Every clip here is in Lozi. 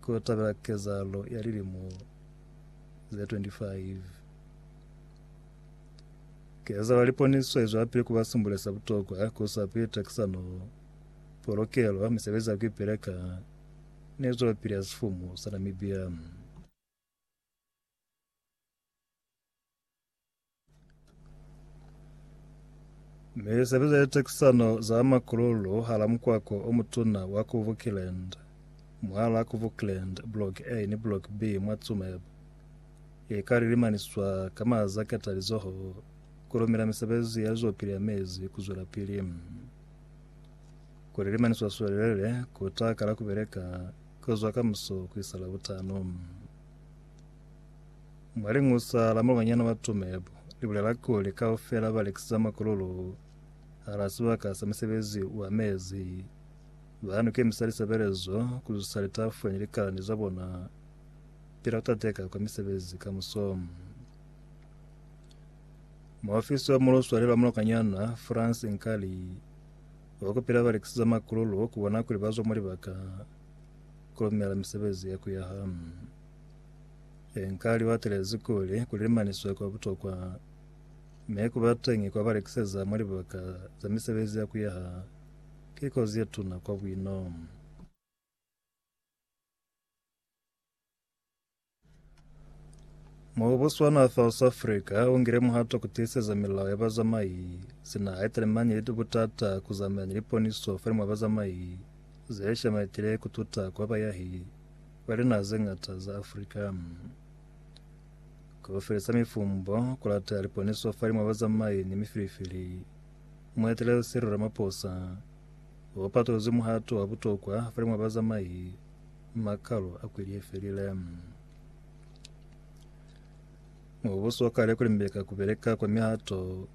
Ku tabela kezahalo ya lilimo ze 25 Kezahala liponiso izwelapili kuba simbule sa butokwa ku sa pili takisano, polokelo, misebezi ya kuipeleka, ni zwelopili ya sifumu sa Namibia. Mi sebeza litekisano za makululu hala mukwako omutuna wa ku Vukland, mwahala ku Vukland Block A ni Block B mwa Tsumeb, ika lilimaniswa ka maza ketalizoho kulumila misebezi ya lizwapili ya mezi kuzwelapili. Kulilimaniswa swelelele kuta kala kubeleka kuzwa kamuso kuisa Labutano. Mwa lingusa la malwanyana ba Tsumeb li bulela kuli kaufela ba lekisisa makululu hala sibaka sa misebezi wa mezi. Ba nukemisa lisebelezo ku zusa litafwe ni likalani za bona pila ku tateka kwa misebezi ka musomo. Muofisi wa muluswali la mulokanyana France Nkali wa kupila balekisi za makululu kubona kuli bazwa mulibaka kulumela misebezi ya kuyaha. Ee, nka liwatelezi kuli kulimaniswe kwa butokwa mi kubateñi kwa balekiseza mwa libaka za misebezi ya kuyaha ki kozi yetuna kwa bwino. Mubuso wa naha South Africa ungile muhato kutiiseza milao ya bazamai sina haitalemani ni butata kuzameana ni liponiso falimwa bazamai zeshamaetile kututa kwa bayahi. Kwa linaha ze ñata za Afrika, ku felisa mifumbo ku lata liponiso fa limwa bazamai ni mifilifili. Mueteleli Cyril Ramaphosa u patolozi muhato wa butokwa fa limwa bazamai makalo a kweli ye felile. Mubuso wa kale kulimbeka kubeleka kwa mihato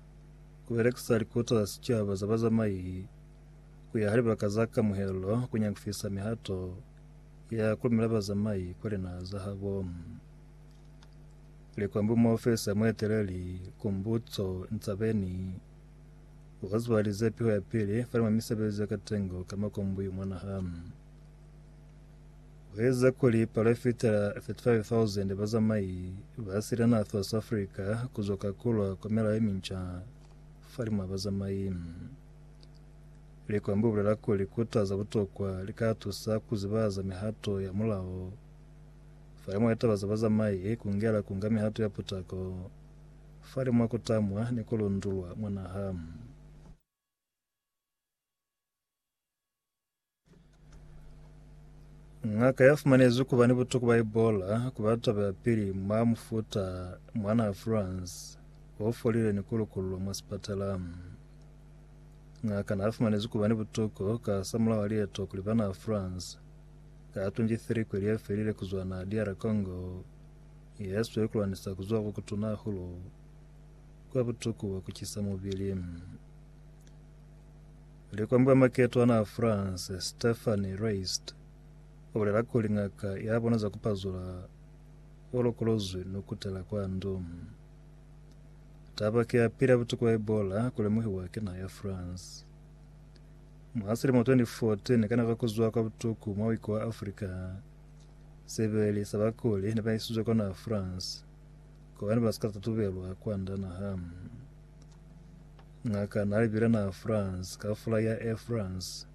kubelekisa likuta za sichaba za bazamai kuya ha libaka za kamuhelo kunyakufisa mihato ya kulumela bazamai kwa linaha za habo. Likwambu muofisa ya mueteleli Kumbutso Ntsabeni ukazuhalize piho ya pili falima misebezi ya katengo ka makombuyu mwanaha. Weza kuli palo ifitela 35,000 bazamai ba sila na South Africa kuzoka kulwa kwa mela ye minca falima bazamai. Likwembe u bulela kuli ku taza butokwa li ka tusa ku zibahaza mihato ya mulao. Fa imwe ya taba za bazamai i kungela ku nga mihato ya putako fa li mwa ku tamwa ni ku lundulwa mwa naha. Ng'aka ya fumanezwi kuba ni butuku ba Ebola kuba taba ya pili mwa mufuta mwana wa France o folile ni ku lukululwa mwa sipatala. Ng'aka na fumanezwi kuba ni butuku ka samulaho wa lieto kuli bana wa France ka 23 kweli ye felile kuzwa na DR Congo ye swe kulwanisa kuzwa ku kutuna hahulu kwa butuku bwa kucisa mubili. Likwambi wa maketwana a France, Stephanie Reist, u bulela kuli ngaka ya bona za ku pazula u lokolozwi ni ku kutela kwa ndu. Taba ki ya pili ya butuku bwa Ebola ku lemuhiwa ki naha ya France. Mwa silimo 2014, ka nako ya ku zwa kwa butuku mwa wiko wa Africa, sebeli sa bakuli ne ba isizwe kwa naha France, kobani ba si ka tatubelwa kwand'a naha. Ngaka na li bile na France, ka fula ya Air France.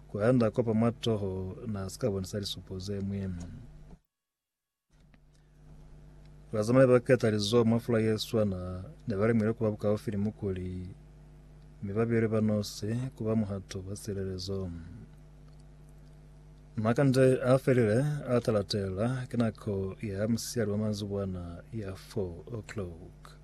Ku ya nda kopa matoho, na si ka bonisa lisupo ze mwi. Bazamai ba keta lizoho mwa fula ye swana, ne ba lemile kuba bukaufi ni mukuli, mi ba bile ba nosi kuba muhato wa silelezo. Makande a felile a talatela, ki nako ya musiali wa manzibwana ya 4 o'clock.